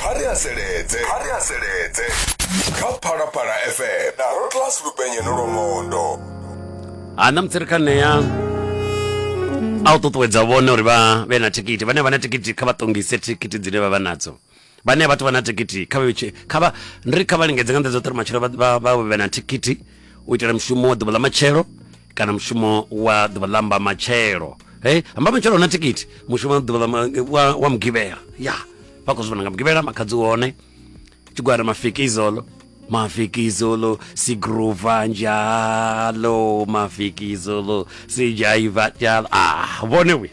kha ri haseledze kha ri haseledze kha phalaphala fm na rotlas lupenye no lwomondo ha na mutsirikhaneya a u ṱuṱuwedza vhone uri vha vhe na thikiti vhane vha na thikiti kha vha ṱongise thikiti dzine vha vha nadzo vhane vhathu vha na thikiti kha vha vhe- kha vha ndi ri kha vha lingedze nga nḓa dzoṱhe uri matshelo vha- vha vha vhe na thikiti u itela mushumo wa ḓuvha ḽa matshelo kana mushumo wa ḓuvha ḽa mba matshelo hey amba matshelo una tikiti mushumo wa ḓuvha wa, wa mugivhela ya vha khou zwi vhona nga mugivhela makhadzi wone tshigwada mafiki izolo mafiki izolo sigruva njalo mafiki izolo sijaiva njalo ah vhone we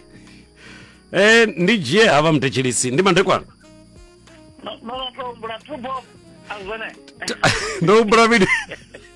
eh ndi dzhie hava mutetshelisi ndi mandekwana ndo humbula vhili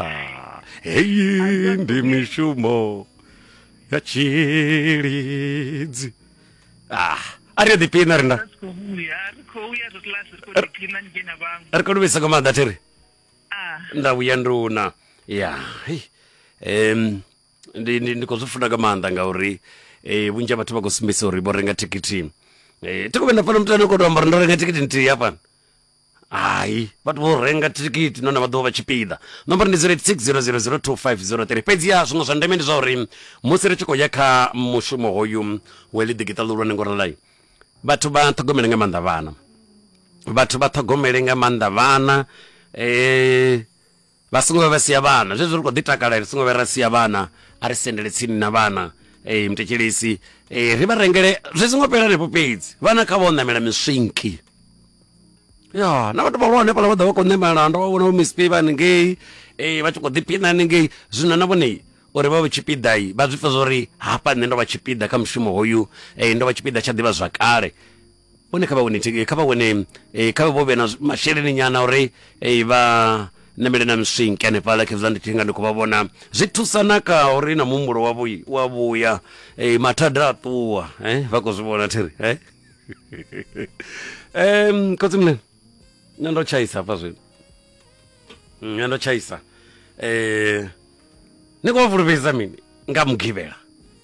Ah, heyi ndi mishumo ya tshilidzi ah a ri a ḓipina rina ri khou vhuya ri khou ya zwo class ri khou ḓiphina ni dzhena vhaṅwe ri kho luvhisa nga maanḓa thiri ah nda vhuya nduna ya hei. em ndi ndi ndi khou zwi funa nga maanḓa ngauri eh vhunzhi ha vhathu vha khou sumbedzisa uri vho renga thikhithi eh thi khou vhuya nda pfana muthu ane khou tou amba uri ndo renga thikhithi nthihi hafhano hai vhathu vho renga thikhithi nahone vha ḓovha vha tshipiḓa nomboro ndi 0860002503 fhedziha zwiṅwe zwa ndeme ndi zwa uri musi ri tshi khou ya kha mushumo hoyu wa ḽi ḓikiṱa ḽihulwane ngo ralai vhathu vha ṱhogomele nga maanḓa vhana vhathu vha ṱhogomele nga maanḓa vhana eh Vha songo vhuya vha sia vhana zwezwi ri khou ḓi takala ri songo vhuya ra sia vhana a ri sendele tsini na vhana ee muthetshelesi ee ri vha rengele zwi songo fhela henefho fhedzi vhana kha vha o ṋamela miswinki ya na vhathu vhahulwane fhala vha ḓa vha khou ṋamela ndo vha vhona vho misp vha haningei ee vha tshi khou ḓiphina haningei zwino na vhone uri vha vhe tshipiḓa vha zwi pfha zwa uri hafha nṋe ndo vha tshipiḓa kha mushumo hoyu ee ndo vha tshipiḓa tsha ḓivha zwakale hone kha vha wane thikhe- kha vha wane eh, kha vhe vho vhe na zwi- masheleni nyana uri eh, vha namele na miswinke hanefhala khezwa ndi thinga ndi khou vha vhona zwi thusa na ka uri na muhumbulo wa vhuyi- wa vhuya eh, mathada a ṱuwa eh, vha khou zwi vhona thiri eh? um khotsi mne nṋe ndo tshaisa hafha zwino Mm, nṋe ndo tshaisa um ni khou vha fulufhedzisa mini nga mugivhela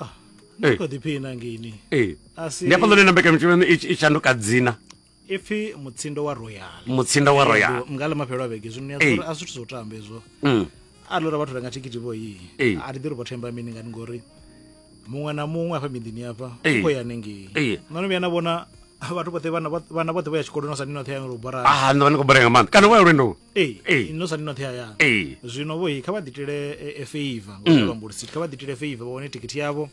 ah, ni kho ḓiphina ngini ee ndi afha ḽone na mbekanyamushumo i shanduka dzina ipfi mutsindo wa royal mutsindo wa royal nga ḽa mafhelo a vhege zwino a zwithu zwo tamba hezwo mm. a lora vhathu renga thikhithi vho yi a ri ḓi ri vho themba mini ngani ngori muṅwe na muṅwe afha miḓini afha u khou ya nengei no no vhuya na vhona vhathu vhoṱhe vhana vhoṱhe vha ya tshikoloni sa ni noṱhe ya ngori u bora ah, no vha ni khou bora nga maanḓa kana vho ya lwendoni Ee, Ee. no sa ndi noṱhe hayani ee zwino vho kha vha ḓitele e- e feiva Mm. ngoluambulisi kha vha ḓitele feiva vha wane thikhithi yavho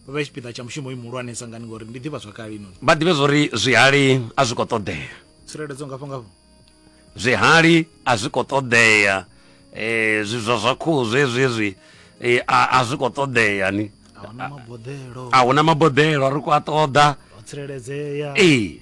vha vhe tshipiḓa tsha mushumo uyu muhulwane sangani ngori ndi ḓivha zwakale inoni vha ḓivhe zwori zwihali a zwi khou ṱoḓea tsireledzo ngafho ngafho zwihali a zwi khou ṱoḓea eh zwi zwa zwa khuhu zwezwi zwi eh, a a zwi khou ṱoḓea ni ahuna maboḓelo a huna maboḓelo ri khou a ṱoḓa ho tsireledzea ee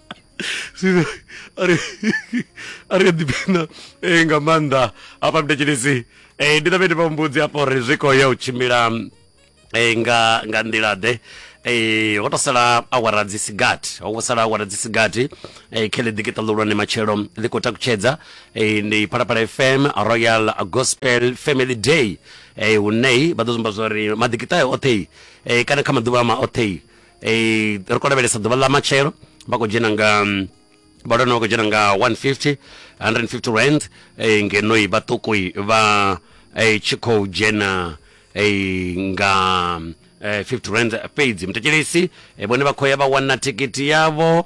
Zwino ari ari a ḓipfina eh, nga maanḓa hafha mdetshilisi eh, ndi ṱavhe ndi vha mbudzi hafha uri zwi khou ya u tshimbila eh, nga nga nḓila ḓe eh, ho to sala awara dzi sigathi ho vho sala awara dzi sigathi eh, khe ḽi ḓikiṱa ḽihulwane matshelo ḽi khou takutshedza eh, ndi phalaphala fm royal gospel family day eh, hune vha ḓo zumba zwa uri maḓikiṱa oṱhe eh, kana kha maḓuvha ama oṱhe eh, ri khou lavhelesa ḓuvha ḽa matshelo vha khou dzhena nga mm, vhalwana vha khou dzhena nga 150 150 rand eh, ngenoi vhaṱukui vha eh, tshi khou dzhena eh, nga mm, eh, 50 rand fhedzi mutetshelesi eh, vhone vha khou ya vha wana thikhithi yavho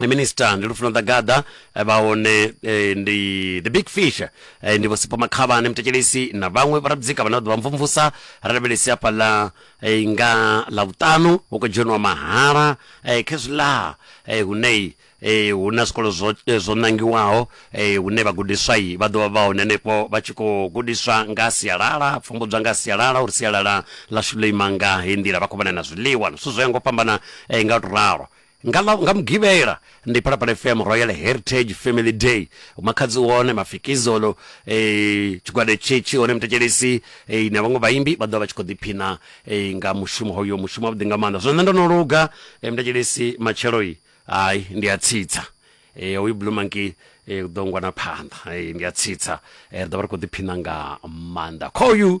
Eh, minister ndi lufuno ḓagaḓa eh, vha hone eh, ndi the big fish eh, ndi vho sipho makhavhane mutetshelesi na vhaṅwe vharabudzika vhane vha ḓo vha mvumvusa ra lavhelesi hafha ḽa eh, nga ḽa vhuṱanu hu khou dzheniwa mahala eh, khezwiḽa eh, hunei eh, hu na zwikolo zwo, eh, zwo nangiwaho eh, hune vhagudiswa-i vha ḓo vha vha hone henefho vha tshi khou gudiswa nga ha sialala pfumbudzwa nga ha sialala uri sialala ḽashu ḽo ima nga heyi nḓila vha khou vhona na zwiḽiwa na zwithu zwo ya ngo fhambana eh, nga u to ralo Nga ḽa nga Mugivhela ndi Phalaphala FM Royal Heritage Family Day. Makhadzi u hone, Mafikizolo, tshigwada hetshi tshi hone, Mutetshelesi na vhaṅwe vhaimbi vha ḓovha vha tshi khou ḓiphina nga mushumo hoyo, mushumo wavhuḓi nga maanḓa. Zwino nṋe ndo no luga Mutetshelesi matshelo hai ndi a tsitsa hoyu Blue Monkey u ḓo ngwa na phanḓa ndi a tsitsa ri ḓovha ri khou ḓiphina nga maanḓa khoyu.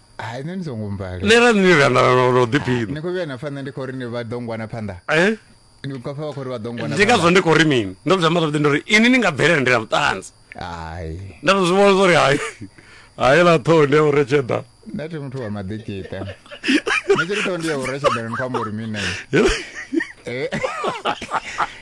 hai nṋe ni songo mmbala nṋe ra ni randa ro ḓiphina ni khou vhuya na pfha nṋe ndi khou ri ni vha ḓongwana phanḓa eh? ndi khou pfha vha khou ri vha ḓongwana ndi ngazwo ndi khou ri mini ndo zwi amba zwavhuḓi ndo ri ini ni nga bvelela ndi na vhuṱanzi hai nda tou zwi vhona zwo ri hai hai ḽa ṱhoho ndi ya u retsheda nda thi muthu wa maḓikita nṋe tshi ri ṱhoho ndi ya u retsheda ni khou amba uri mini eh?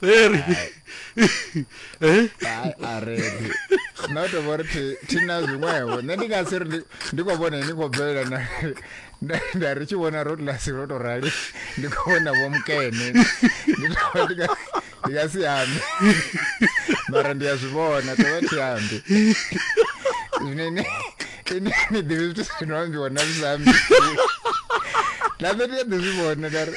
There. Eh? Hai, a re ndi. Na u tou vha uri thi- thi na zwiṅwevho nṋe ndi nga si ri ndi- ndi khou vhona ni khou bvelela na nda- nda ri tshi vhona rotlasi lwo tou rali ndi khou vhona vho mukene ndi tou vha ndi nga- ndi nga si ambi mara ndi a zwi vhona tou vha thi ambi zwino ini ini ni ḓivhi zwithu zwino ambiwa na zwi sa ambi na nṋe ndi a ḓi zwi vhona nda ri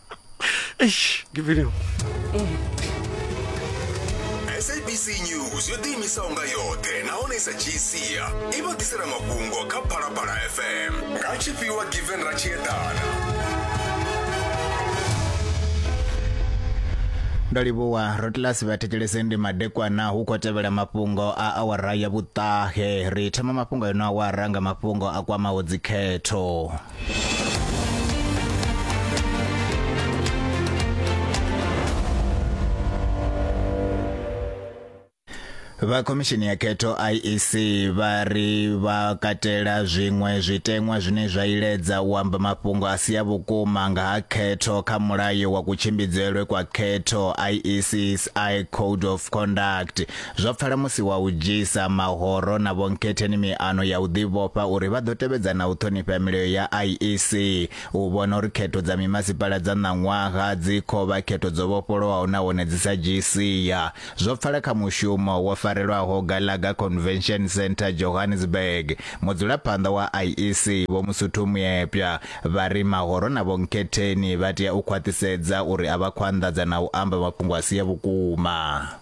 eish ngiviliwe sabc news yo ḓiimisaho nga yoṱhe nahone i sa dzhii sia i vha ḓisela mafhungo kha phalaphala fm nga tshifhiwa given ra tshi eḓana ndo livhuwa rotlasi vhathetshelesi ndi madekwana hu khou tevhela mafhungo a awara ya vhuṱahe ri thoma mafhungo eno awara nga mafhungo a kwamaho dzikhetho vha khomishini ya khetho IEC vha ri vha katela zwiṅwe zwiteṅwa zwine zwa iledza u amba mafhungo a si a vhukuma nga ha khetho kha mulayo wa kutshimbidzelwe kwa khetho IEC's I Code of Conduct Zwa pfala musi wa u dzhiisa mahoro na Vho Nkhetheni miano ya u ḓivhofha uri vha ḓo tevhedza na u ṱhonifha milayo ya IEC u vhona uri khetho dza mimasipala dza ṋaṅwaha dzi khou vha khetho dzo vhofholowaho nahone dzi sa dzhii sia. Zwo pfala kha mushumo wo farelwaho Gallagher Convention Centre, Johannesburg, mudzulaphanḓa wa IEC Vho Musuthu Muepya vha ri mahoro na Vho Nkhetheni vha tea u khwaṱhisedza uri a vha khou anḓadza na u amba mafhungo a si a vhukuma.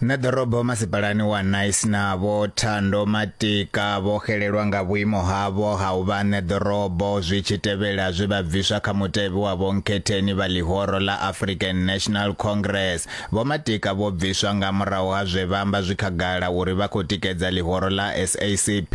Na ḓorobo masipalani wa Nice na vho Thando Matika vho xelelwa nga vhuimo havho ha u vha ṋe ḓorobo zwi tshi tevhela zwe vha bviswa kha mutevhe wa vho Nkhetheni vha ḽihoro ḽa African National Congress. Vho Matika vho bviswa nga murahu ha zwe vha amba zwi khagala uri vha khou tikedza ḽihoro ḽa SACP.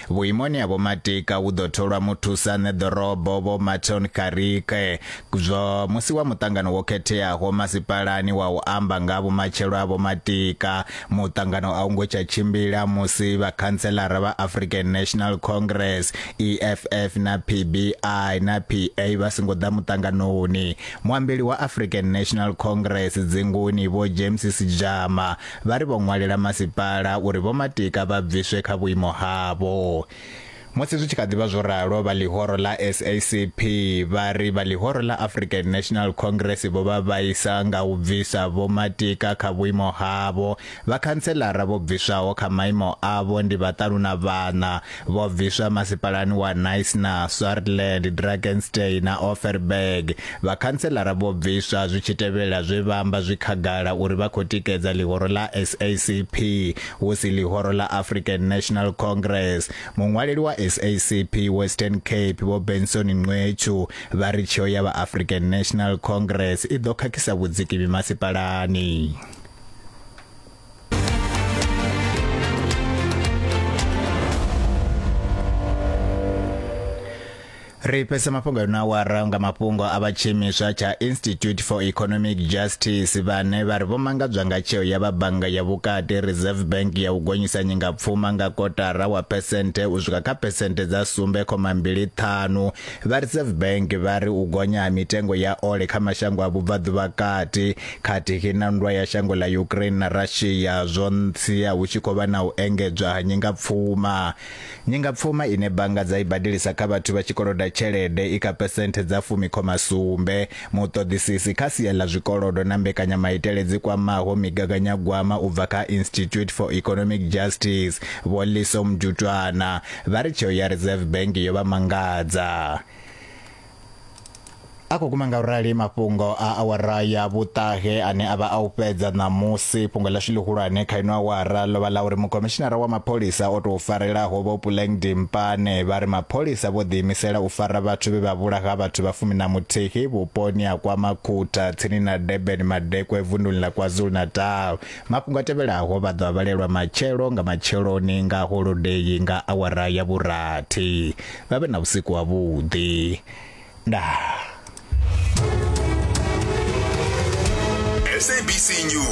Vhuimoni ha Vho Matika hu ḓo tholwa muthusaṋe ḓorobo Vho Marton Karike zwo musi wa muṱangano wo khetheaho masipalani wa u amba nga ha vhumatshelo ha Vho Matika. Muṱangano a u ngo tsha tshimbila musi vhakhantselara vha African National Congress, EFF na PBI na PA vha songo ḓa muṱanganoni. Muambeli wa African National Congress dzinguni Vho James Sejama vha ri vho ṅwalela masipala uri Vho Matika vha bviswe kha vhuimo havho. Musi zwi tshi kha ḓi vha zwo ralo, vha ḽihoro ḽa SACP vha ri vha ḽihoro ḽa African National Congress vho vha vhaisa nga u bvisa Vho Matika kha vhuimo havho. Vhakhantseḽara vho bviswaho kha maimo avho ndi vhaṱanu na vhaṋa. vho bviswa masipalani wa Nice na Swartland, Drakenstein na Offerberg. Vhakhanselara vho bviswa zwi tshi tevhela zwe vha amba zwi khagala uri vha khou tikedza ḽihoro ḽa SACP hu si ḽihoro ḽa African National Congress. Muṅwaleli wa SACP Western Cape vho Benson Nqwechu vha ri tsheo ya vha African National Congress i ḓo khakhisa vhudziki mimasipalani. ri fhese mafhungo a na wara nga mafhungo a vha tshiimiswa tsha institute for economic justice vhane vha ri vho mangadzwa nga tsheo ya vha bannga ya vhukati reserve bank ya u gonyisa nyingapfuma nga kotara wa phesenthe u swika kha phesenthe dza sumbe khoma mbili ṱhanu Vha Reserve Bank vha ri u gonya ha mitengo ya ole kha mashango a vhubvaḓuvha kati khathihi na nndwa ya shango ḽa Ukraine na Russia zwo ntsia hu tshi khou vha na u engedzwa ha nyingapfuma. Nyingapfuma ine bannga dza i badelisa kha vhathu vha tshi koloda tshelede i kha phesenthe dza fumi khoma sumbe. Muṱoḓisisi kha sia ḽa zwikolodo na mbekanyamaitele dzi kwamaho migaganyagwama u bva kha Institute for Economic Justice, Vho Liso Mjutwana, vha ri tsheo ya Reserve Bank yo vha mangadza. A khou guma nga u rali mafhungo a awara ya vhuṱahe ane a vha a u fhedza ṋamusi fhungo ḽashu ḽihulwane kha ino awara ḽo vha ḽa uri mukomishinara wa mapholisa o tou farelaho vho Puleng Dimpane vha ri mapholisa vho ḓiimisela u fara vhathu vhe vha vhulaha vhathu vha fumi na muthihi vhuponi ha kwa Makhutha tsini na Durban Madekwe vunduni ḽa KwaZulu-Natal Mafhungo a tevhelaho vha ḓo a vhalelwa matshelo nga matsheloni nga holodei nga awara ya vhurathi. Vha vhe na vhusiku ha vhuḓi. Ndaa. SABC News.